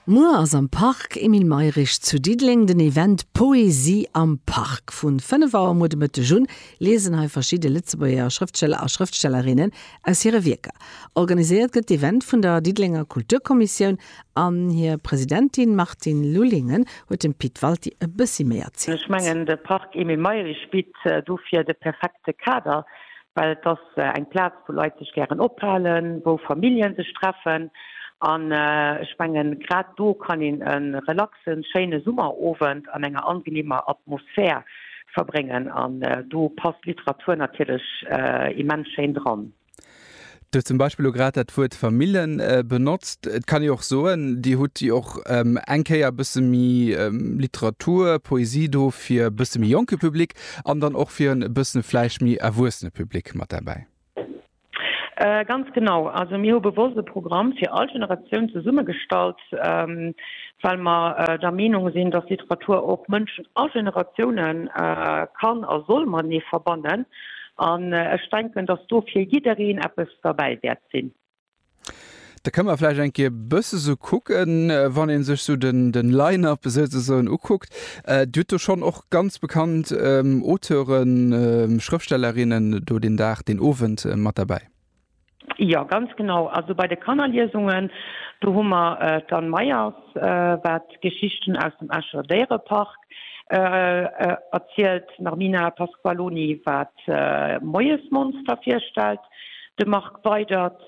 Muer ass am Parc Emile Mayrisch zu Diddeleng den Event Poesie am Parc. Vu 5 Auer muer de Mëtteg un liesen hei verschidde Lëtzebuerger Schrëftsteller a Schrëftstellerinnen aus hire Wierker. Organiséiert gëtt d'Event vun der Diddelenger Kulturkommissioun an hir Presidentin Martine Lullingen huet dem Pit Walti e bëssi méi erzielt. Ech mengen de Parc Emile Mayrisch bitt dofir de perfekte Kader, well et ass Eng Plaz wou Leit sech gären ophalen, wou Familljen sech treffen an ech mengen grad do kann een en relaxen schéine Summerowend an enger angenehmer Atmosphär verbréngen an do passt Literatur natierlech immens schéin dran. Dir hutt zum Beispill elo grad dat Wuert Famillen benotzt. Et kann ee och soen, Dir hutt jo och eng Kéier e bësse méi Literatur, Poesie do fir e bësse méi jonke Public. An dann och fir en e bëssen vläicht méi erwuessene Public mat derbäi? Ganz genau. Also mir hu bewosst e Programm fir all Generatioun zesummegestallt, well mer der Meenung sinn, dass Literatur och Mënschen a Generatioune kann a soll matenee verbannen. An ech denken, dass do fir jiddereen eppes derbäi wäert sinn. Da kënne mer vläicht eng Kéier e bësse sou kucken, wann ee sech sou de Line-up souzesoen ukuckt. Dir hutt do schonn och ganz bekannt Auteuren, Schrëftstellerinnen do deen Dag, deen Owend mat derbäi. Jo, ganz genau. Also bei de Kannerliesungen, do hu mer d'Anne Meyers, wat d'Geschichten aus dem Escher Déierepark erzielt, d'Narmina Pasqualoni, wat Moiesmonster virstellt, De Marc Weydert,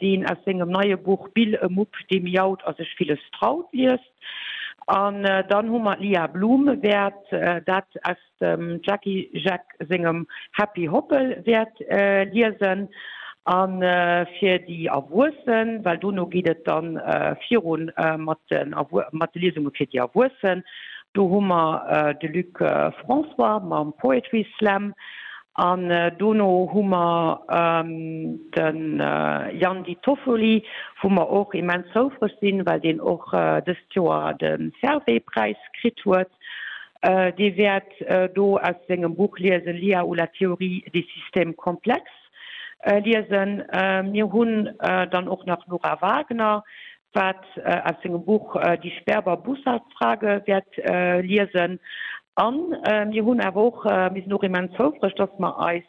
deen aus sengem neie Buch Bill e Mupp, dee miaut a sech villes traut liest. An dann hu mer d'Lia Bluhm, wäert dat aus dem Jacky Jeck sengem Happy Hoppel wäert liesen. A fir déi Erwuessen, well dono geet et dann viru mat de Liesunge fir déi Erwuessen, do hu mer de Luc François mam Poetry Slam. An dono hu mer de Jan Di Toffoli, wou mer och immens houfreg sinn, well deen och dëst Joer de Servais-Präis kritt huet. Dee wäert do aus sengem Buch liesen, L'IA ou la théorie des systèmes complexes liesen. Mir hunn dann och nach d'Nora Wagner, wat aus sengem Buch Die Sperber Bussard Frage wäert liesen. A mir hunn awer och, mir sinn och immens houfreg, dass mer eis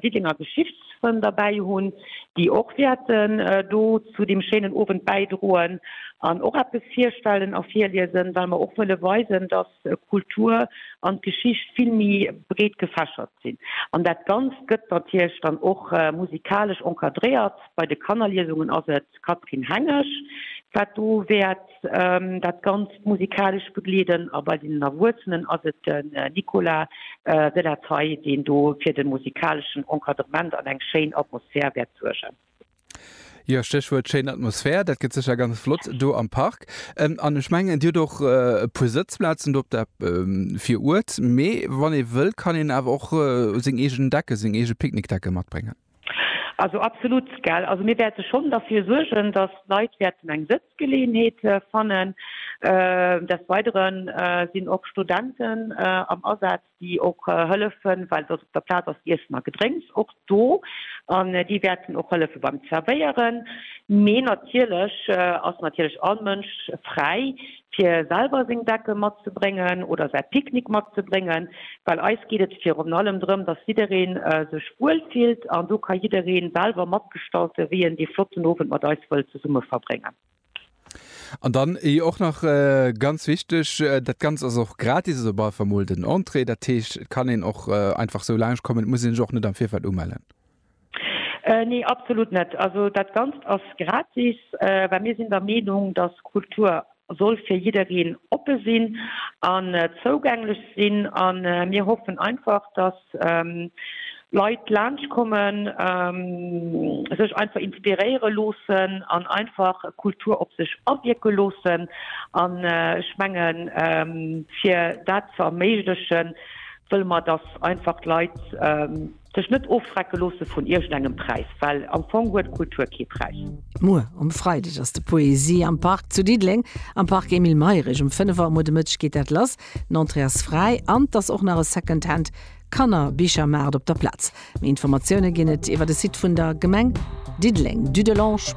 Diddenger Geschichtsfrënn derbäi hunn, déi och wäerten do zu deem schéinen Owend bäidroen an och eppes virstellen a virliesen, well mer och wëlle weisen, dass Kultur an d'Geschicht vill méi breet gefächert. sinn. An dat Ganzt gëtt natierlech dann och musikalesch encadréiert. Bei de Kannerliesungen ass et d'Catherine Hengesch, wat do wäert dat Ganzt musikalesch begleeden a bei den Erwuessenen ass et den Nicolas de la Taille, deen do fir de musikaleschen Encadrement an eng schéin Atmosphär wäert suergen. Jo, Stéchwuert schéin Atmosphär. Dat gëtt sécher ganz flott do am Park. An ech mengen, Dir hutt och e puer Sëtzplazen do op der Viruert. Mee wann ee wëll, kann een awer och seng eegen Decke, seng eege Picknickdecke matbréngen. Also absolut, gell. Also mir wäerte schonn derfir suergen, dass d'Leit wäerten eng Sëtzgeleeënheet fannen. Desweidere sinn och Studenten am Asaz. déi och hëllefen, well datt op der Plaz ass Iessen a Gedrénks och do an déi wäerten och hëllefe beim Zerwéieren. Mee natierlech ass natierlech all Mënsch fräi, fir selwer seng Decke matzebréngen oder säi Picknick matzebréngen, well eis geet et virun allem drëm, datt jidderee sech wuel fillt an do ka jidderee selwer matgestalte wéi en dee flotten Owend mat eis wëll zesumme verbréngen. An dann eh och nach ganz wichteg, dat Ganzt ass och gratis, also bal war mol den Entrée. Dat heescht, et kann een och einfach sou laanscht kommen, et muss een sech och net am Virfeld umellen. Nee, absolut net. Also dat Ganzt ass gratis, well mir sinn der Meenung, dass Kultur soll fir jiddereen oppe sinn an zougänglech sinn. An mir hoffen einfach, dass Leit laanscht kommen, sech einfach inspiréiere loossen an einfach Kultur op sech awierke loossen. An ech mengen, fir dat ze erméiglechen, wëlle mer, dass einfach d'Leit sech net ofschrecke loosse vun iergendengem Präis, well am Fong huet Kultur kee Präis. Muer um Freideg ass de Poesie am Park zu Diddeleng, am Park Emile Mayrisch. Um 5 Auer muer de Mëtteg geet dat lass. D'Entrée ass fräi an 't ass och nach e Secondhand Kannerbichermaart op der Plaz. Méi Informatioune ginn et iwwer de Site vun der Gemeng Diddeleng, dudelange.